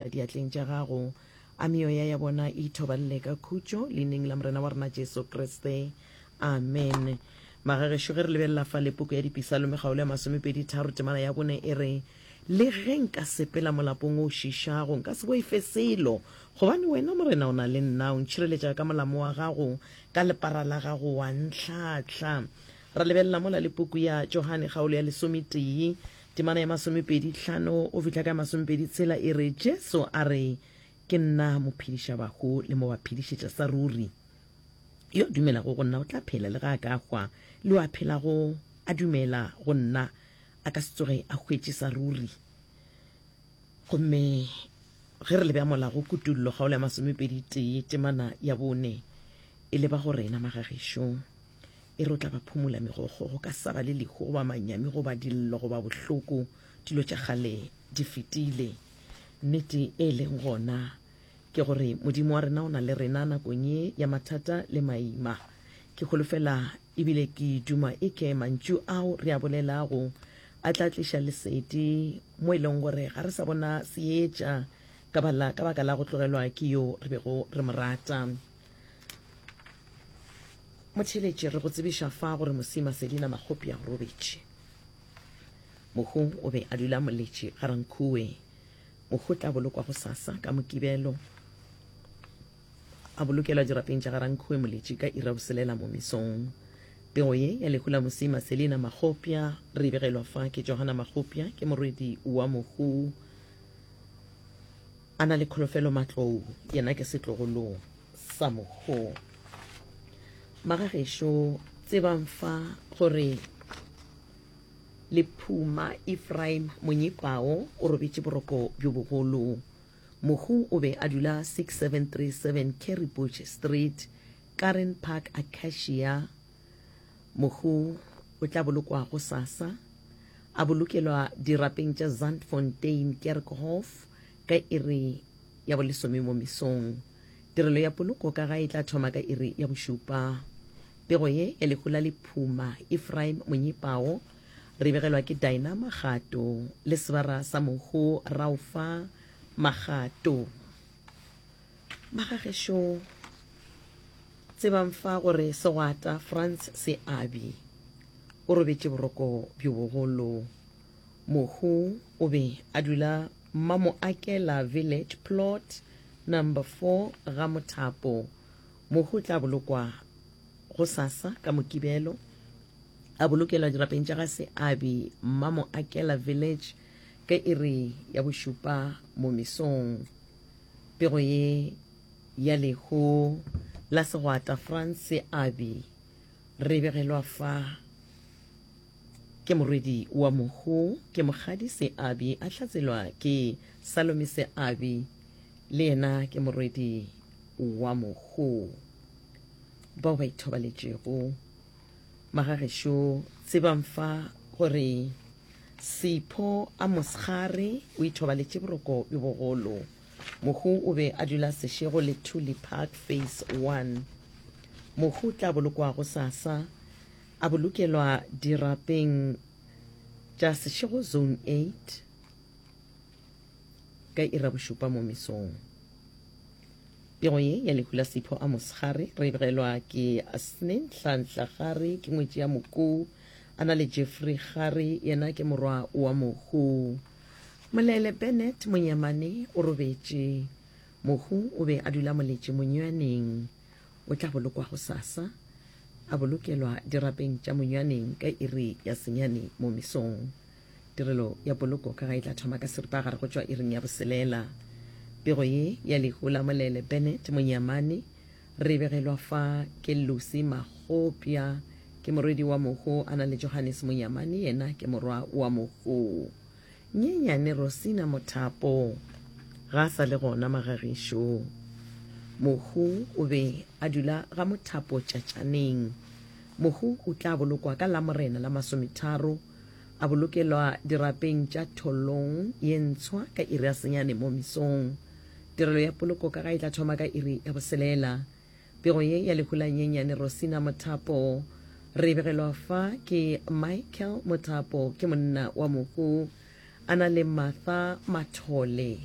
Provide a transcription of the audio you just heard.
diatleng tša gago, a meoya ya bona e ithobalele ka khutšo Leineng la Morena wa rena Jesu Kriste. Amen. Magagešo ge re lebelela fa le poko ya Dipisalome kgaolo ya masomepedi tharo temana ya bone e re, Le ge nka sepela molapong o šišago, nka se boife selo, gobane wena Morena o na le nna, o ntšhireletša ka molamo wa gago, ka lepara la gago wa ntlhahla. Ra lebelela mola le puku ya Johane kgaolo ya lesometee Temana ya masomepedi hlano go fihla ka ya masomepedi tshela e re, Jesu a re, Ke nna mophedišabahu le mo ba phedišetša sa ruri. Yo a dumelago go nna o tla phela le ge a ka hwa, le yo a phelago a dumela go nna a ka se tsoge a hwetše sa ruri. Gomme ge re lebjammola go Kutollo kgaolo ya masomepedi tee temana ya bone e leba go rena, magagešo. E re o tla ba phomola megokgo, go ka sa ba le lehu goba manyami goba dillo goba bohloko, dilo tša kgale di fetile. Nnete e leng gona ke gore Modimo wa rena o na le rena nakong ye ya mathata le maima. Ke holofela ebile ke duma e ke mantšu ao re a bolelago a tla tliša lesedi mo e leng gore ga re sa bona seetša ka baka la go tlogelwa ke yo re bego re mo rata. motheletše re go tsebiša fa gore mosima sedina makgopi a robetše mohung o be a dula moletše ga rankhuwe mohu tla bolokwa go sasa ka mokibelo a bolokelwa dirapeng tša ga rankhuwe moletše ka ira boselela mo mesong pego ye ya lehu la mosima selina makgopja re begelwa fa ke johana makgopja ke morwedi wa mohu A na le kholofelo matlou, yena ke setlogolo sa mokho. Magagešo, tsebang fa gore lephuma Ephraim monyipao o robetše boroko bjo bogolo. Mohu o be a dula 6737 Carrie Bush Street, Karen Park, Acacia, Mohu o tla bolokwa go sasa, a bolokelwa dirapeng tša Zandfontein Kerkhof ka iri ya bolesome mo mesong. Tirelo ya poloko ka ga e tla thoma ka iri ya bošupa. Pego ye ya lehu la lephuma, Ephraim Monyipao, re begelwa ke Dinah Magato le sebara sa mohu Raufa Magato. Ba ga gešo tsebang fa gore segwata Franz Seabi o robetše boroko bjo bogolo. Mohu o be a dula Mamoakela Village Plot number 4 ga Mothapo. Mohu o tla bolokwa go sasa ka Mokibelo a bolokelwa dirapeng tša ga Seabi Mamoakela Village ka iri ya bošupa mo mesong. Pego ye ya lehu la segwata Frantz Aby re begelwa fa ke morwedi wa mohu ke Mokgadi Seabi a hlatselwa ke Salome Seabi le yena ke morwedi wa mohu bao ba ithobaletšego Magagešo tsebang fa gore Sipho a mosgare o ithobaletše boroko bjo bogolo. Mohu o be a dula sešego le Thuli Park Phase 1. Mohu tla bolokwa go sasa a bolokelwa dirapeng tša sešego Zone 8. ka ira bošupa mo mesong. Pego ye ya lehu la Sipho a mosegare re begelwa ke Asne Nhlanhla Gare ke ngwetši ya Mokoo a na le Jeffrey Gare yena ke morwa wa Mohu. Molele Bennett Monyamane o robetše. Mohu o be a dula moletše monywaneng. O tla bolokwa go sasa. A bolokelwa dirapeng tša monywaneng ka iri ya senyane mo mesong. Tirelo ya poloko ka ga e tla thoma ka seripagare go tšwa iring ya boselela. Pego ye ya lehu la molele Bennett Monyamane re e begelwa fa ke Lucy Magopya, ke morwedi wa mohu a na le Johannes Monyamane yena ke morwa wa mohu. Nyenyane Rosina Mothapo ga a sa le gona magagišo. Mohu o be a dula ga Mothapo Tšatšaneng. Mohu o tla bolokwa ka Lamorena la masometharo A bolokelwa dirapeng tša tholong ye ntshwa ka iri ya senyane mo mesong. Tirelo ya poloko ka ga e tla thoma ka iri ya boselela. Pego ye ya lehulanye Nyane Rosina Mothapo. Re e begelwa fa ke Michael Mothapo, ke monna wa mohu. A na le Martha Mathole.